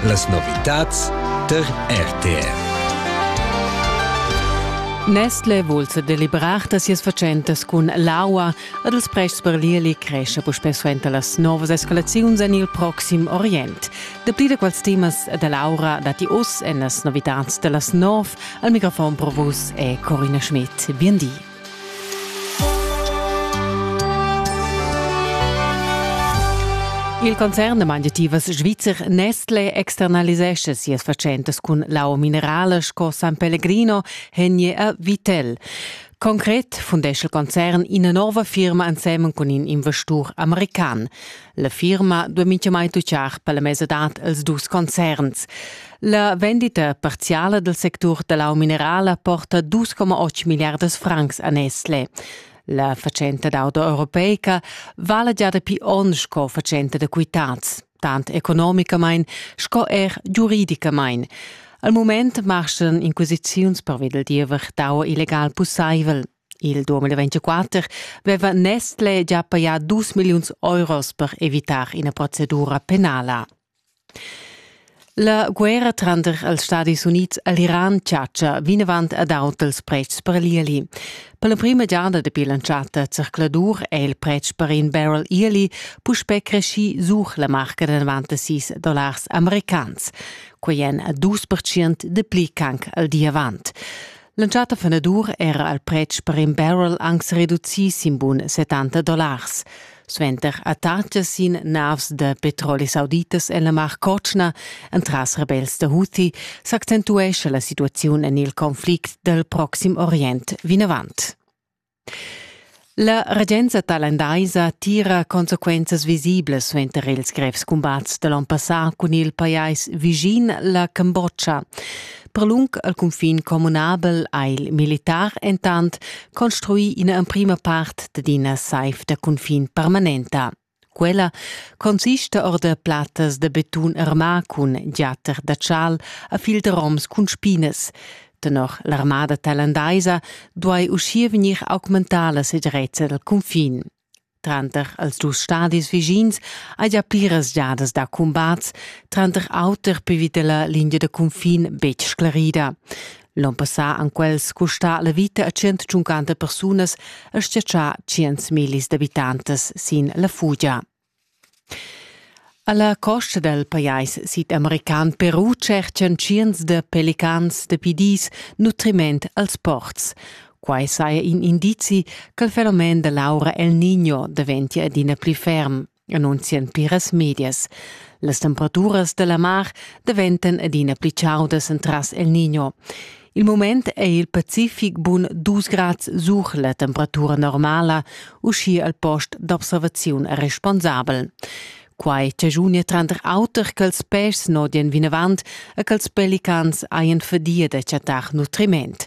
Las novitads tar RTR. Nestle vul se delibrar da sias fatschentas cun l'aua ed els prests per l'Ieli cresce puspè suenter las novas escalaziuns en il proxim Orient. Dapli da quels temas da Laura dati oz en las novitads da las nov. Al microfon pro vus è Corina Schmidt. Bien di. Il concern da mangiativas svizzer Nestle externalisescha sias fatschentas cun l'au minerala sco San Pellegrino Henie a Vitel. Concret fundescha il concern ina nova firma ensemen cun in investur american. La firma duai mintgamai tutgar per la mesadad els dus concerns. La vendita parziala del sectur da lau minerala porta 2,8 milliardas francs a Nestle. La fatschenta d'auto europeica vala già dapi onn sco fatschenta da quitads, tant economicamain sco er giuridicamain. Al moment marschan inquisiziuns pervi del diever d'aua illegal pussaivel. Il 2024 veva Nestle già pagà 2 milliuns euros per evitar ina procedura penala. La guerra tranter els Stadis Unids e l'Iran chatscha vinavant ad aut ils pretschs per l'ieli. Per l'emprima giada dapi l'entschatta zercladur è il pretsch per in barrel ieli puspè creschì sur la marca da 96 dollars americans. Quai èn dus percent dapli ch'anc al di avant. L'entschatta fenadur era il pretsch per in barrel anc sa reducì sin bun 70 dollars. Suenter attacca sin navs da petroli sauditas en la Mar Cotschna entras rebels da Houthi s'accentuescha la situaziun en il conflict dal Proxim Orient vinavant. La regenza tailandaisa tira consequenzas visiblas suenter ils grevs cumbats da l'onn passà cun il pajais vischin, la Cambodscha. Per lung al cunfin communabel ha il militar entant construì ina emprima part d'ina saiv da cunfin permanenta. Quella consista or da plattas da betun armà cun giatter da chal a fil da roms cun spinas. Tenor l'armada tailandaisa duai uschia vegnir augmentada la segirezza dal cunfin. Tranter els dus stadis vischins hai gia pliras giadas da cumbats, tranter auter per vita la linea da cunfin betg sclarida. L'on passà han quels custà la vita a 150 persunas e stiatschà 100 millis d'abitantas sin la fugia. Alla costa del pajais sid-american Peru cercan tschients de pelicans de pidis nutriment als ports. Quai saja in indizi che il fenomen dell'aura El Niño daventia adina pli ferm. annunzian pliras medias. Las temperaturas dalla mar daventan adina pli chaudas entras El Niño. Il moment è il Pacific bun 2 grad sur la temperatura normala, uschi al post d'observaziun responsabel. Quai chagiunia tranter auter ch'els pes nodien vinavant e ch'els pelicans hajan fadia da chattar nutriment.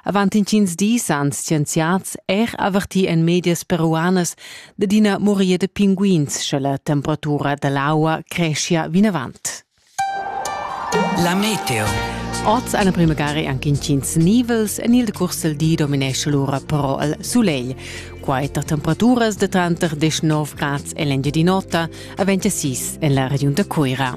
Avant intgins dis han scienziads er avertì en medias peruanas dad ina muria da pinguins, sche la temperatura da l'aua creschia vinavant. La meteo. Oz a la primagari anche intgins nivels en il decurs del di dominesce l'ora però il soleil. Quai tar temperaturas de tranter 19 grads e l'engiadinota a 26 en la regiun da Cuira.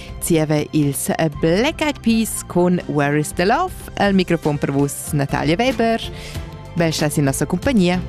Zieva il Black Eyed Peas con Where is the Love al microfon per vus Natalia Weber. Ben stai in nossa compagnia.